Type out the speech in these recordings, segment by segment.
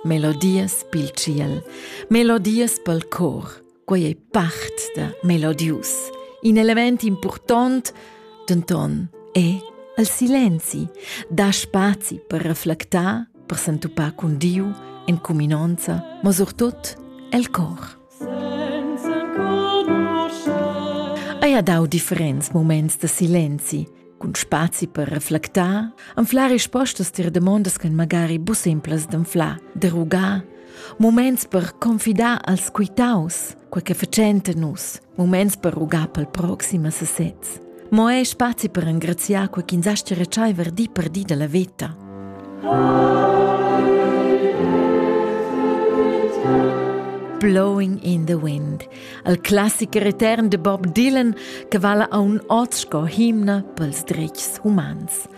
Melodias pil tschiel, melodias pel cor, quei ei part da melodius. In element impurtont, denton, è il silenzi, da spazi per reflectar, per s'entupar cun Diu, en cuminonza, ma surtut el cor. Eia dau differents moments da silenzi, cun spazi per reflectar, anflar rispostas tier demondas ch'en magari bu simplas d'anflar, de rugar, moments per confidar als quitaus, quei che fecenta nus, moments per rugar pel proxima sesez. Mo ei spazi per engraziar quei ch'ins astga retscheiver di per di dalla veta. Blowing in the Wind, al classicher etern de Bob Dylan che vala a un oz sco himna pels dretgs humans –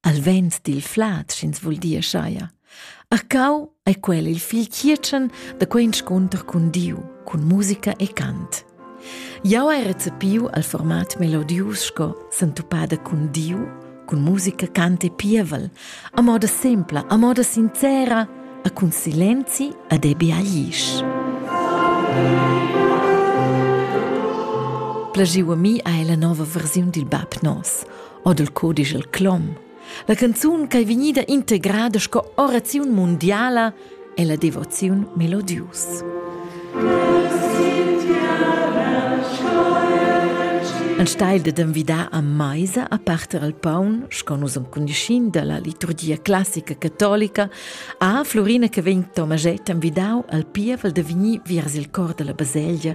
al vent dil flad, sch'ins vul dir schaia. Arcau ei quel il fil chietschen da quei inscunter cun Diu, cun musica e cant. Jau hai recepiu al format melodius sco sentupada cun Diu, cun musica, cant e pievel, a moda sempla, a moda sincera, a cun silenzi ad ebi aglisch. Plagiu a mi ha la nova versiun dil bab nos. od il codisch el clom. La canzun ch'ei vegnida integrada sco oraziun mundiala è la devoziun melodius. Ein steil de envidar a meisa a parter al paun, sco nus am condischin dalla liturgia classica catolica, a Florina che vegn Tomaget envidau al pievel de vegnir viers il cor della baselgia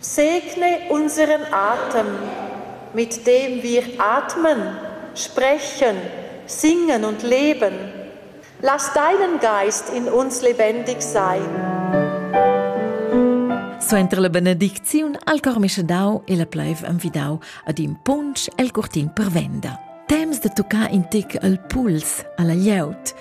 Segne unseren Atem, mit dem wir atmen, sprechen, singen und leben. Lass deinen Geist in uns lebendig sein. Suenter la benedicziun al cor mischedau e la pleiv envidau ad in punsch el curtin per venda. Temps de toccare in tic al puls, alla glieud.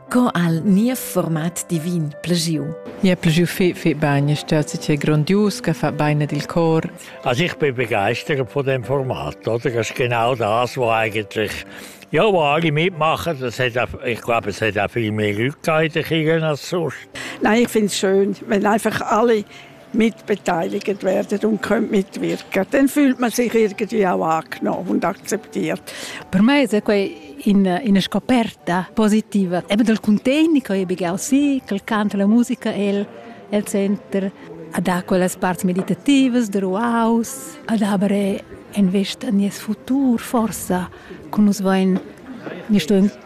Co al niev format divin plegiu? Mi ha plegiu fe fe bagn, stat si grondius, che fa beine dil cor. Also ich bin begeistert von dem Format, oder? Das ist genau das, was eigentlich ja, wo alle mitmachen, das hat auch, ich glaube, es hat auch viel mehr Leute gegeben als sonst. Nein, ich finde es schön, wenn einfach alle mitbeteiligt werden und können mitwirken. Dann fühlt man sich irgendwie auch angenommen und akzeptiert. Per me è quei in, in scoperta positiva. Eben dal contegni che io begau sì, che canto la musica el, el center, ad ha quelles parts meditativas der Ruaus, ad aber invest a nies futur forsa, con nus vain, mi sto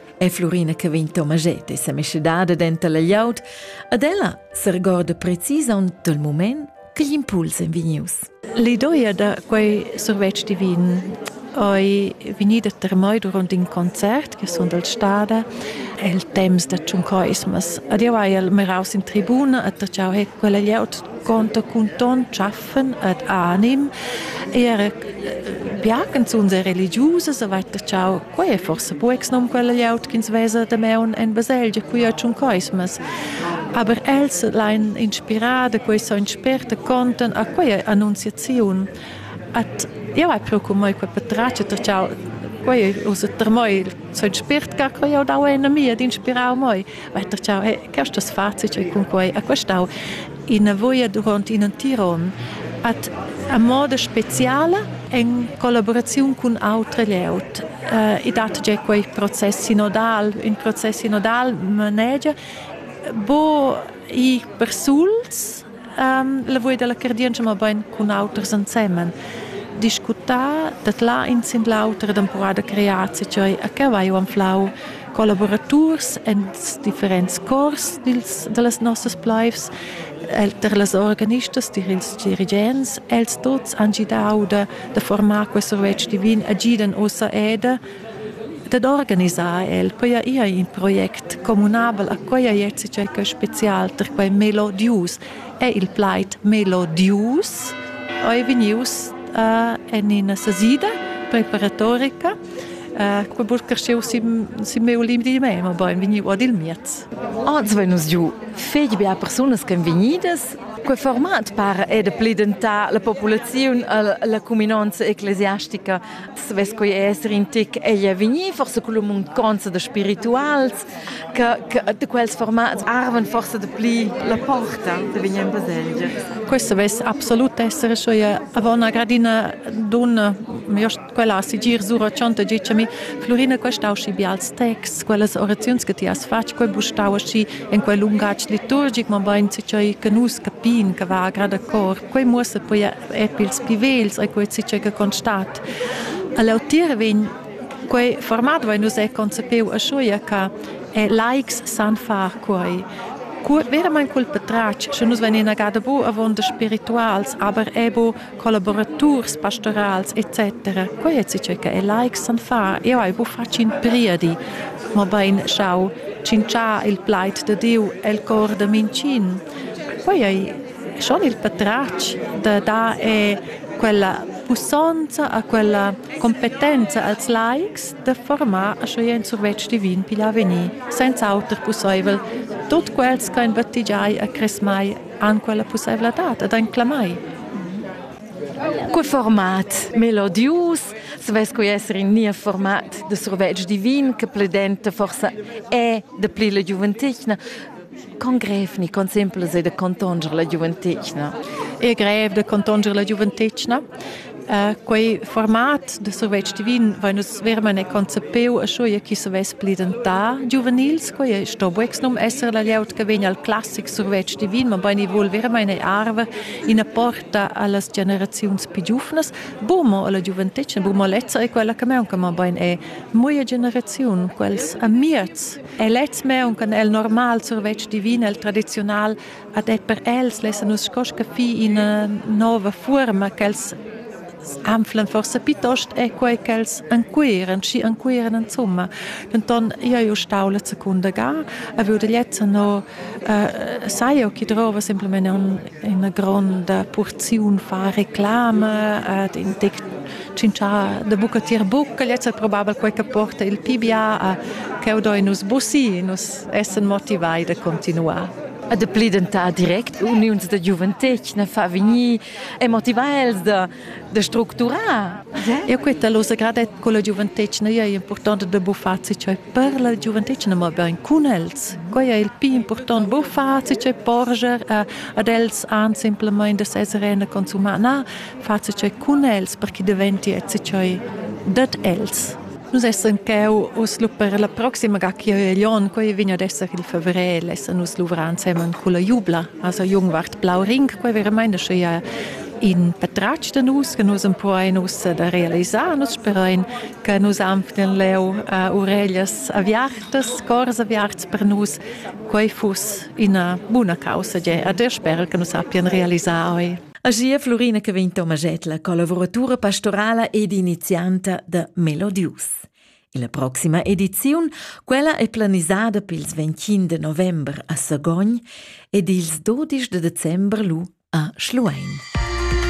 è Flurina che vegn Tomaget e sa meschedada denter la glieud, ad ella sergorda precisaun dal mument che gl'impuls è vegnius. L'idoia da quei survetsch divin ei vegnida termai durant in concert che sun dal stada el temps da tschuncoismas. Ad jau hai el meraus in tribuna a ta ciao he quella glieud conta cun ton tschaff pfn et anim era biacan zuns e religiusas a vaita chau quei forse bu ex nom quella gliaut ch'ins vesa de meun en baselgia qui a tschun coismas aber els lein inspirada quei so inspirta conten a quei annunziaziun at eu hai pro con moi quei patrace ter chau quei us ter moi so inspirt ca quei au dau en a mia d'inspirau moi Vaita ciao, e questas facits e cunquai a questau ina voia durant in entira onn at a moda speciala en collaboraziun cun autre layout. Uh, I dat già quei process sinodal, in process sinodal manegia bo i persuls lavur dalla cardientscha mabain cun auters ensemen discutà dat là in sin l'auter ed empurà da crear cei a cavagl anflau collaboraturs en differents cors dils, da las nossas plaivs, der las organistas, dir ils dirigents, els tots han gidau da, da formar quest survetsch divin a gidan ossa eda Dad organisar el poja ir in project communabel a quai ierts circa spezial tar quai melodius è il plaid melodius ei vegnius uh, en ina sasida preparatorica uh, quei burcarscheu si si meu limdi mei ma bein vegniu ad il miez Oz vegn nus giu fetg bia persunas che vegnidas Quei format par è de plidentà la populaziun alla cuminanza ecclesiastica savess quei esser in tic ei è vegnì forse con munconza da spirituals che che da quels formats arven forse da pli la porta de vegnir in baselgia questo vess absolut essere scho aveva una gradina donna io quella sigir sura chanta dicemi Florina questa usci bials texts quellas oraziuns che ti has fatg quel bustau asci in quel lungatg liturgic ma bein che che nus capin che va a grada cor Quei muossa poi er pils pli vegls e quei che che constat. All'otir vegn quei format vai nus è concepeu a schuia che laics san far quei. Verament cul patratg, sche nus venin agada bu avonda spirituals, aber ebo collaboraturs pastorals etc. Quei è che che laics san far. Io hai bu fatg in priedi, ma bein schau cincià il plaid de Diu el cor de mincin. Poi hai schon il patratg da dar è quella pussonza a quella competenza als laics da formar a schoi en survetsch divin pigl avegnir, senza auter pusseivel tut quels che en battigiai a cresmai an quella pusseivladad ed ein clamai. Cu format melodius, svess cu essere in nia format de survetsch divin, che pledenta forsa è de pli la giuventigna, Con grev ni con simplas ei da contonger la giuventetgna. È grev da contonger la giuventetgna. Uh, quei format de survetsch divin va nus vermene concepeu a schuia chi savess pli dentà giuvenils, quei è sto buex num esser la lieut che vegn al classic survetsch divin, ma beini vuol vermene arver ina porta allas generaziuns più giuvnas, bumo alla giuventetgna, bumo lezza è quella che meunca, ma bein è muia generaziun, quels amiez E lez me un can el normal survetsch divin el tradiziunal ad et per els lessa nus scosca fi ina nova forma ch'els anflen forse piuttost è quei ch'els ancuiren schi ancuiren insomma denton io io stau la secunda ga a vud lezza no uh, sai io chi drova simplement un ina gronda purziun fa reclama ed in tec tschintschar da buca tier buca lezza probabel quei che porta il pibia cheu doi nus bussi nus essen motivai da continuar e de plidentar direct uniuns da giuventetgna fa vegnir e motivar els da da structurar. E questa losa gradet con la giuventetgna è importante da buffar cioè per la giuventetgna ma ben con els. Quai è il più importante buffar cioè porger ad els an simplemente essere eine consumar na far cioè con els perché diventi cioè dat els. Nus essen cheu us lu per la proxima ga chi è Lyon, quei vegn ad esser il fevrel, essen nus luvrar insieme con la jubla, also Jungwart Blau Ring, quei veramente sche in patratg da nus che nus empuoin ussa da realisar nus sperain che nus anflen leu uh, ureglias aviartas cors aviarts per nus quei fuss ina buna causa ge a der sper che nus sappian realisar oi Agia Florina che vegn Tomagetla, collaboratura pastorala ed inizianta da Melodius. La proxima ediziun, quella è planisada pils 25 de november a Sagogn ed ils 12 de december lu a Schluein.